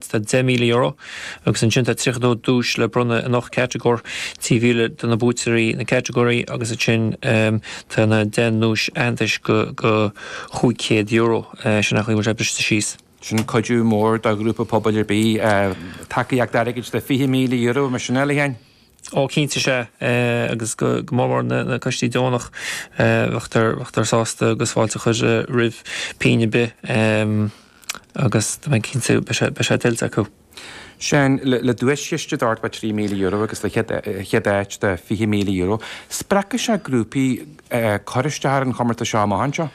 Tá, €10,000 agus ansin tá tríocha duais le bronnadh in ocht catagóir, €3,000 do na buaiteoirí na catagóirí agus ansin tá na deich nduais aitheantais de €500. Sin an dóigh a bhfuil sé briste síos. Sin cuidiú mór do ghrúpa pobail ar bith. Tacaíocht airgid de €20,000, mar sin é, a Leanne? Ó cinnte is ea, agus go mór mór na coistí deonach, beifear, beifear sásta agus fáilte a chur roimh pingin ar bith agus tá mé cinnte beidh sé-beidh sé tuillte acu. Sin le, le duaischiste d'ord mar trí míle euro agus le chéad, chéad áit de fiche míle euro, spreagfaidh sé grúpaí eh cur isteach ar an chomórtas seo amach anseo.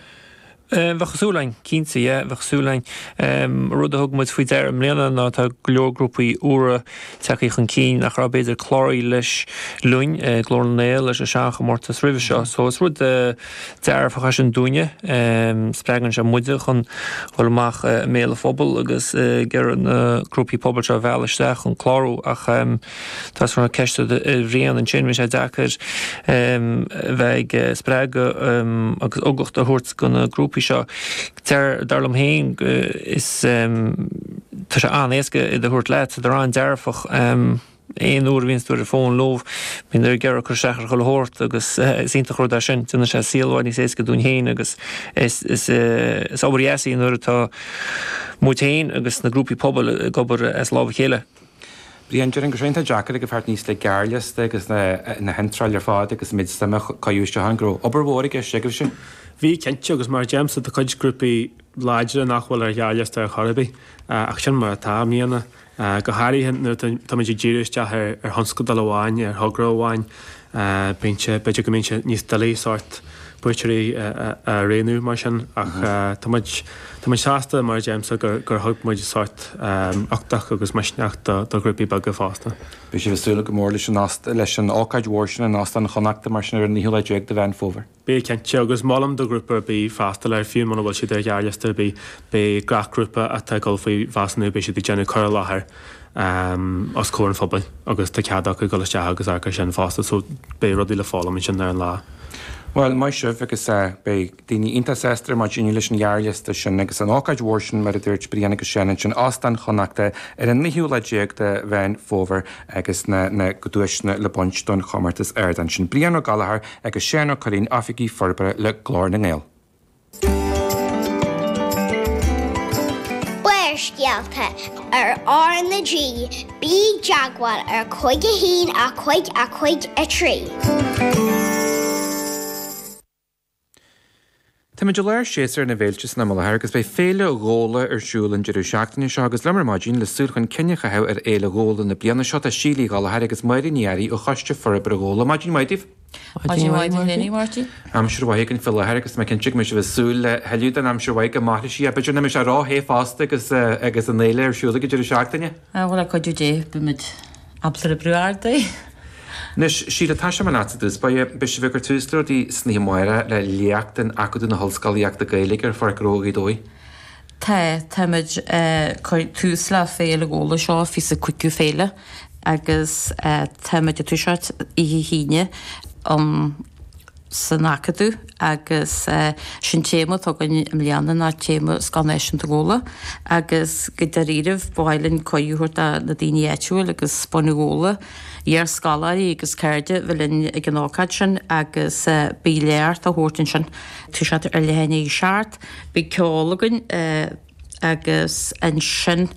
Eh, bheadh súil againn, cinnte, yeah, bheadh súil againn. Ehm, rud a thug muid faoi deara i mbliana ná tá go leor grúpaí úra ag teacht chun cinn nach raibh, b'fhéidir, cláraithe leis, linn, eh, Glór na nGael leis an seanchomórtas roimhe seo, so is rud, eh, dearfach é sin dúinne, ehm, spreagann sé muide chun dhul amach, eh, i mbéal an phobail agus, eh, ag iarraidh na grúpaí pobail seo a mhealladh isteach chun clárú ach, ehm, Chuir tusa ceist ar Bhrian ansin, bhí sé deacair bheith ag spreagadh agus ugach a thabhairt do na grúpaí seo. Dar liom féin tá sé an-éasca iad a thabhairt leat, tá siad an-dearfach, aon uair a bhíonns tú ar an bhfón leo bíonn siad ag iarraidh cur isteach ar chuile shórt agus is iontach rud é sin, déanann sé saol i bhfad níos éasca dúinn féin agus is obair dheas í nuair atá muid féin agus na grúpaí pobail ag obair as lámh a chéile. Brian, Déarfainn go raibh sé deacair teacht aníos le gearrliosta agus na na hiontrálacha ar fad agus an méid suime a cuireadh ann go raibh obair mhór i gceist agaibhse. Bhí, cinnte, agus mar a deirimse tá cuid grúpaí láidre nach bhfuil ar ghearrliosta ar chor ar bith, ach sin mar atá, i mbliana, go háirithe nuair atáimid ag díriú isteach ar thionscadal amháin, ar thogra amháin. B'fhéidir go mbíonn sé níos doilí sórt buaiteoirí a roghnú mar sin ach tá muid sásta, mar a deirimse, gur thug muid sórt uchtach agus misneach do ghrúpaí beaga fosta. Beidh sibh ag súil go mór leis an ócáid mhór sin in Óstán Chonnachta mar sin ar an naoú lá déag de Mheán Fómhair. Beidh, cinnte, agus mholfainn do ghrúpa ar bith freastal air, fiú muna bhfuil siad ar ghearrliosta ar bith, beidh gach grúpa atá ag dul faoi mheasúnú, beidh siad ag déanamh cur i láthair os comhair an phobail agus tá cead acu dul isteach agus amharc air sin fosta, so beidh rudaí le foghlaim ansin ar an lá. Bhuel, maith sibh, agus beidh daoine iontach sásta ar maidin leis an ghearrliosta sin agus an ócáid mhór sin, mar a dúirt Brian agus Seán ansin, Óstán Chonnachta ar an naoú lá déag de Mheán Fómhair agus na duaiseanna le bronnadh don chomórtas ard ansin. Brian Ó Gallchóir. agus Seán Ó Cuirrín, Oifigigh Forbartha le Glór na nGael. Barrscéalta ar RnaG. Bí i dteagmháil ar Cuig a hAon a Cuig a Cuig a Trí. Táimid i lár shéasúr na bhféilte san am i láthair agus beidh Féile Ghabhla ar siúl an deireadh seachtaine seo agus liom ar maidin le súil chun cinn a chaitheamh ar Fhéile Ghabhla na bliana seo. Tá Síle Uí Ghallachóir agus Máirín Uí Fhearraigh ó Choiste Forbartha Ghabhla. Maidin mhaith daoibh! Maidin mhaith duit fhéin, a Mháirtín. Aimsir mhaith againn faoi láthair agus tá mé cinnte go mbeidh sibh ag súil le thuilleadh den aimsir mhaith go mairfidh sí. B'fhéidir nach mbeidh sé róthe fosta agus an fhéile ar siúl ag an deireadh seachtaine! Ah bhuel, le cuidiú Dé, beimid ábalta oibriú ar aghaidh. Anois, Síle, toiseoidh mé leatsa i dtús báire. Beidh sibh ag cur tús le rudaí san oíche amárach le léacht in Acadamh na hOllscolaíochta Gaeilge ar Pháirc Rua Ghaoth Dobhair. Tá, táimid ag cur tús le Féile Ghabhla, seo fiche is a cúigiú féile, agus táimid ag toiseacht oíche hAoine um. san Acadamh agus sé an téama atá againn i mbliana ná téama Scoil Náisiúnta Ghabhla agus go dáiríribh ba mhaith linn cuireadh a thabhairt do na daoine áitiúil agus bunadh Ghabhla, iarscoláirí agus cairde bheith linn ag an ócáid sin agus beidh léacht á thabhairt ansin, toiseacht ar leath i ndiaidh a 7, beidh ceol againn agus ansin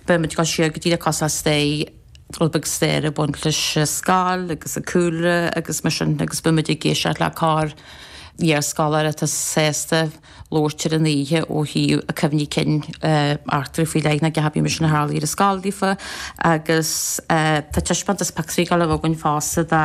beidh muid ag dul siar go dtí na cosa steigh, rud beag staire ag baint leis an scoil agus an cúlra agus mar sin agus beidh muid ag éisteacht le corr-iarscoláire atá sásta labhairt ar an oíche ó thaobh a cuimhní cinn eachtraí faoi leith nó cibé mar sin a tharlaigh ar an scoil daofa agus tá taispeántas pictiúirí ag dul a bheith againn fosta de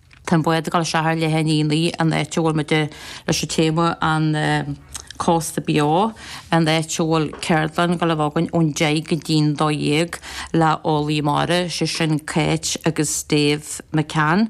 Tá an bád ag dul isteach ar leath i ndiaidh a naoi an áit a bhfuil muid leis an téama An Cósta Beo, an áit a bhfuil ceardlann ag dul a bheith againn ón deich go dtí an dó dhéag le heolaithe mara, sé sin Kate agus Dave McCann,